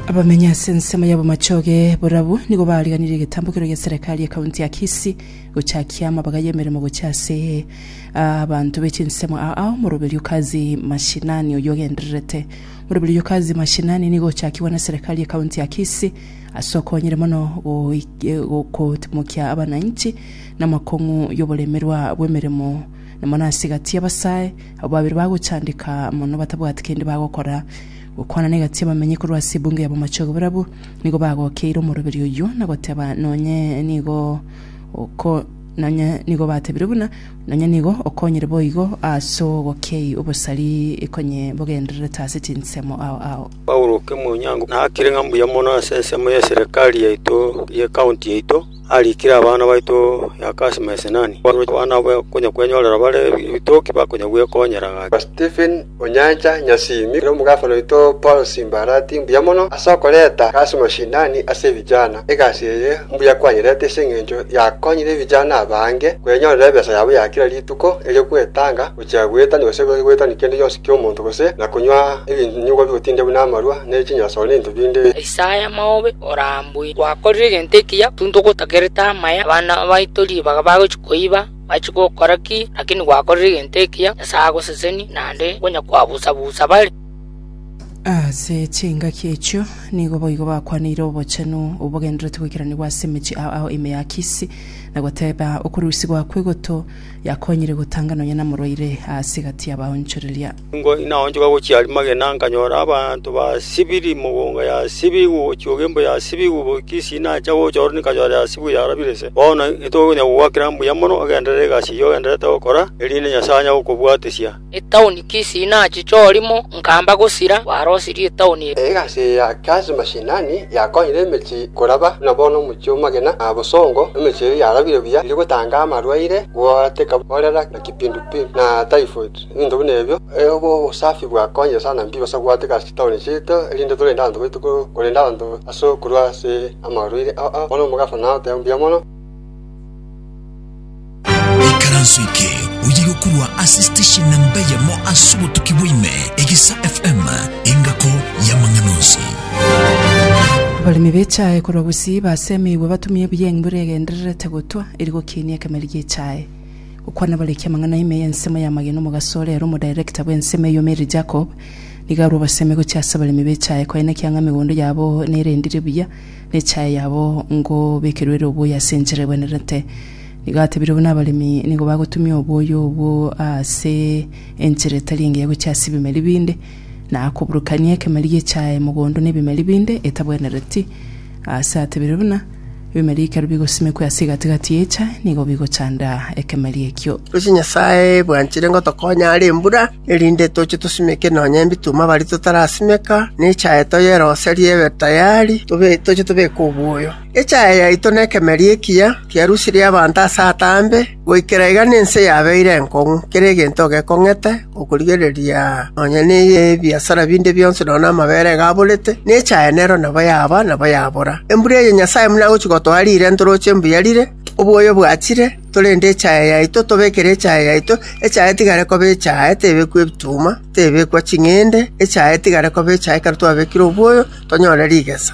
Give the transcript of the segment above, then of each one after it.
Abamenyi ase ensemo ya Bomachoge borabu nigo bariganirie egetambo keria gia serekari ya kaunti ya Kisii gochakia amabaga y'emeremo gochia ase ah, abanto be chinsemo aa ao moroberio Kazi Mashinani oyio ogendererete. Moroberio oyio Kazi Mashinani nigo ochakigwe na serekari ya kaunti ya Kisii ase okonyire mono goik- eh, go- kotimokia abananchi namakong'u y'oboremerwa bw'emeremo na mono ase egati y'abasae Abwo babere bagochandeka mono batabwati kende bagokora. Gokwana na egati abamenyi korwa ase ebunge y'abamachogu barabwo nigo bagokeire omoroberio oyio na goteba nonye nigo oko nonye nigo batebire buna nonye nigo okonyire boigo ase ogokei obosari konye bogendererete ase chinsemo ao ao. Paulo oke Monyango nakire ng'a mbuya mono ase ensemo ye serikali yaito ye county yaito, arikire abana baito ya Kasimi na Sinani, abana abo bakonya kwenyorera bare ebitoki bakonya gwekonyera gaki. Stephen Onyancha Nyasimi, ere omogafana oito Paul Simbarati mbuya mono ase okoreta egasi mashinani ase ebijana. Egasi eye mbuya kwanyerete ase engencho yakonyire ebijana abange kwenyorera ebesa yabo ya kera rituko erio gwetanga, gochia goetania gose goetania kende gionsi ki'omonto gose na konywa ebinyugwa bigotindegwa namarwa ne chinyasoro ne binto binde. Isaya maobe orambue! Gwakorire egento ekiya, intwe togotakerete amaya, abana baito ribaga bagochia koiba, bachie gokora ki? Lakini gwakorire egento ekiya, Nyasae agosesenie, naende onya kwabusa-busa bare. Ase chingaki echio nigo boigo bakwaneire obochenu obogendererete goikeranigwa ase emechie ao ao ime ya Kisi, na goteeba, Okurusigwa kw'egoto Yakonyire gotanga nonya namorwaire aase gati y'abaonchoreria. Nigo naonchoka gochia Arimagedoni nkanyora abanto basibiri, mogonga yasibigwe gochia ogembo yasibigwe, goika isini nacha gocha ororo nkanyora yasibigwe yarabire ise. Bono intwe konya kogwakera mbuya mono, ogenderere egasi eyio ogendererete gokora, erinde Nyasae anye gokobwatesia. Etaoni Kisii nachiche orimo, nkamba gosira, gwarosirie etaoni eria. Egasi ya Kazi Mashinani yakonyire emechie koraba buna bono omochie omogena na bosongo, emechie eria yarabire buya eri gotanga amarwaire goateka korera na kipindupindu na typhoid. Ebinto buna ebio obo obosafi bwakonyire sana mbibo ase goateka ase chitaoni chiaito erinde torende abanto baito korenda abanto ase okorwa ase amarwaire aa. Bono omogafana nagoteba mbuya mono. Ikaranso eke oye gokorwa ase station namba eyemo ase obotuki bwaime, Egisa FM, engako y'amang'ana onsi. Abaremi b'echae korwa Gusii basemeirwe batumie ebuya engbura egendererete gotwa eri gokiinia ekemeri gi'echae. Gokwana abariki amang'ana ime y'ensemo y'amagena omogaso ore ere omoDirector bw'ensemo eyio Mary Jacob nigo arwa obosemi gochia ase abaremi b'echae koenekia ng'a emegondo yabo nerendire buya na echae yabo ngobekerwe ere obuya ase enchera ebwenerete Nigo atebire buna abaremi nigo bagotumia oboyo obwo ase enchera etari engiya gochia ase ebimeri binde, na akoburukania ekemeri gi'echaye mogondo na ebimeri binde etabwenereti. Ase atebire buna, Ebimeri ekero bigosimekwa ase egati-gati y'echaye nigo bigochanda ekemeri ekio. Gose Nyasae bwanchire ngotokonya are embura, erinde toche tosimeke nonya ebituma abari totarasimeka, na echaye toyeroserie ebe tayari, tobe toche tobeke oboyo. Echaya yaito nekemeri ekiya kiarusirie abanto ase ataambe, goikera iga nense yabeire enkong'u, kera egento gekong'ete, okorigereria nonya nebiasara binde bionsi nonya namabere iga aborete, na echaya nero nabo yaba, nabo yabora. Embura eye Nyasae buna agochia gotoa riire ntoroche mbuya rire, obwoyo bwachire, torende echaya yaito, tobekere echaya yaito, echaya etigare koba echaya, tebekwa ebituma, tebekwa ching'ende, echaya etigare koba echaya ekero twabekire obwoyo, tonyore rigesa.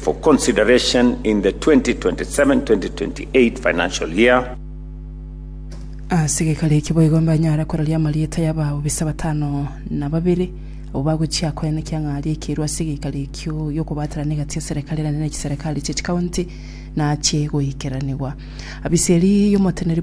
for consideration in the 2027-2028 financial year. Ase gekari eki boigo mbanyare kororia amarieta y'abaobisaa batano na babere, abwo bagochia koena ekiang'aaria ekeruu ase egeikari ekio gi'okobaterana egati ya Serekari enene ne chiserekari chie chikaonti naachie goikeranigwa. Abisi eria y'omoteneri bw'ebisaku.